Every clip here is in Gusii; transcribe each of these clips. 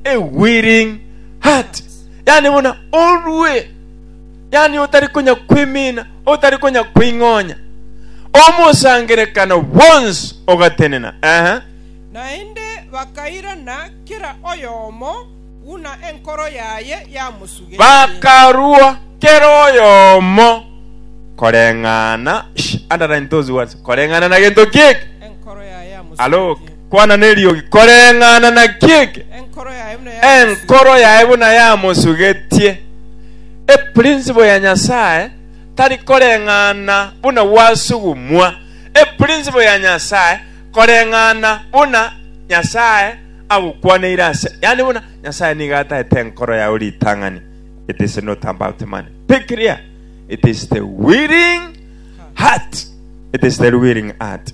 a willing heart yani buna orue yani otari konya kwimina otari konya kwing'onya omosangerekano bwonsi ogatenena ehe Naende bakairana kera oyomo buna enkoro yaye yamosugetie. bakarua kera oyomo koreng'ana Shh, underline those words koreng'ana na gento kieke Enkoro yaye yamosugetie. Alo, Kwana neriogi, koreng'ana na kiege, enkoro yaye buna yamosugetie. Eprinciple ya Nyasaye tari koreng'ana buna gwasugumwa. Eprinciple ya Nyasaye koreng'ana buna Nyasaye agokwaneire ase, yani buna Nyasaye nigo ataete enkoro yao ritang'ani. It is not about money. Be clear. It is the willing heart. It is the willing heart.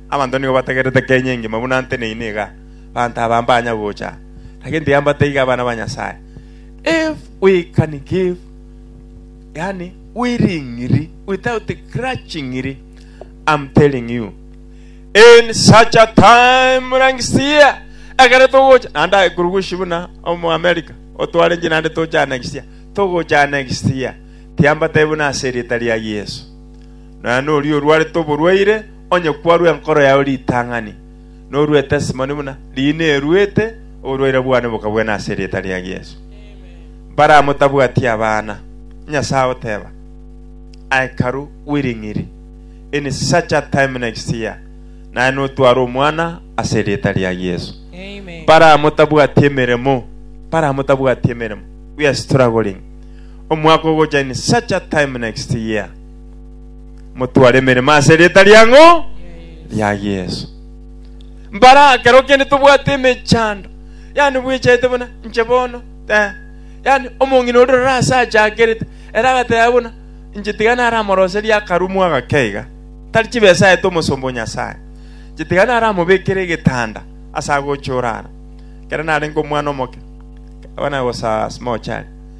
Abanto nigo bategerete Kenya engima buna nteneine iga, abanto aba mbanya gocha aa, lakini tibambate iga abana ba Nyasae. If we can give, yaani willingly, without grudgingly, I'm telling you, in such a time like this year, ekero togocha, naende aikurugushi buna omoamerica, otware inche naende tocha next year, togocha next year, tiambate buna ase erieta ria Yeso. Nonya noria orwarete oborwaire, onye kwarua enkoro yao ritang'ani, noruete esimoni buna riina eruete, oborwaire bwane bokabuena ase erieta ria Yeso. Mbaramotabwati abana, Nyasae agoteba, Aye karu bw'ering'iri, in such a time next year, naye notware omwana ase erieta ria Yeso. Mbaramotabwati emeremo, mbaramotabwati emeremo, we are struggling. Omwaka ogocha in such a time next year. motware emeremo ase erieta riang'o ria Yesu. Mbara kero kende tobwate emechando, yani bwechete buna inche bono eh, yani omong'ina ore rora ase achakerete ere agateba buna inche tiga naramoroserie akarumu agake iga tari chibesa aete omosomba o Nyasae inche tiga naramobekere egetanda ase agocha orara kero narenge omwana omoke abana was a small child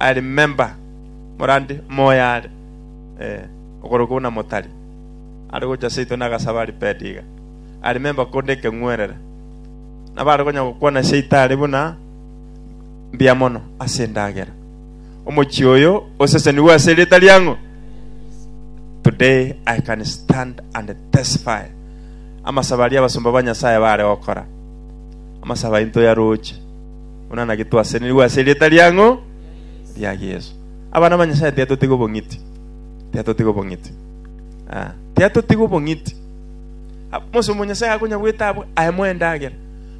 I remember morande moyo are eh, okorokwa buna motari are gocha seito na agasaba repaired iga. I remember konde ekeng'werera nabare konya gokwana seito are buna mbia mono ase endagera omochi oyo osesenigwe ase erita riang'o today i can stand and testify amasaba aria abasomba ba nyasaye bare gokora amasaba into ya roche Buna naki twasesenirigwe ase erieta riang'o ria Yeso. Abana ba Nyasae tiatotiga obong'iti. Tiatotiga obong'iti. Ah, tiatotiga obong'iti. Ah, Mose omo Nyasae akonya bwete abwe ayemo endagera.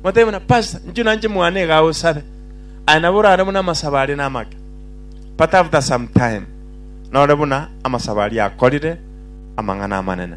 Matabe buna pastor, nchio nanche mwana ega osabe. Aya nabo orare buna amasaba are namake. But after some time, nore buna amasaba aria akorire amang'ana amanene.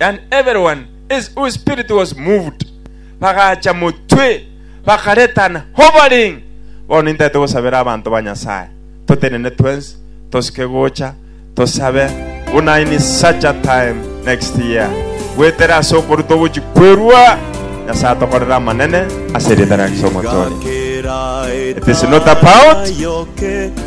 and every one is whose spirit was moved, bagacha motwe, bakareta an hovering. Bono intagete gosabera abanto ba Nyasaye, totenene twensi, tosike gocha, tosabe buna in such a time next year. Gwetere ase okorutwa ogochi kwerua, Nyasaye atokorere amanene ase erieta ria Kristo Omotonyi. It is not about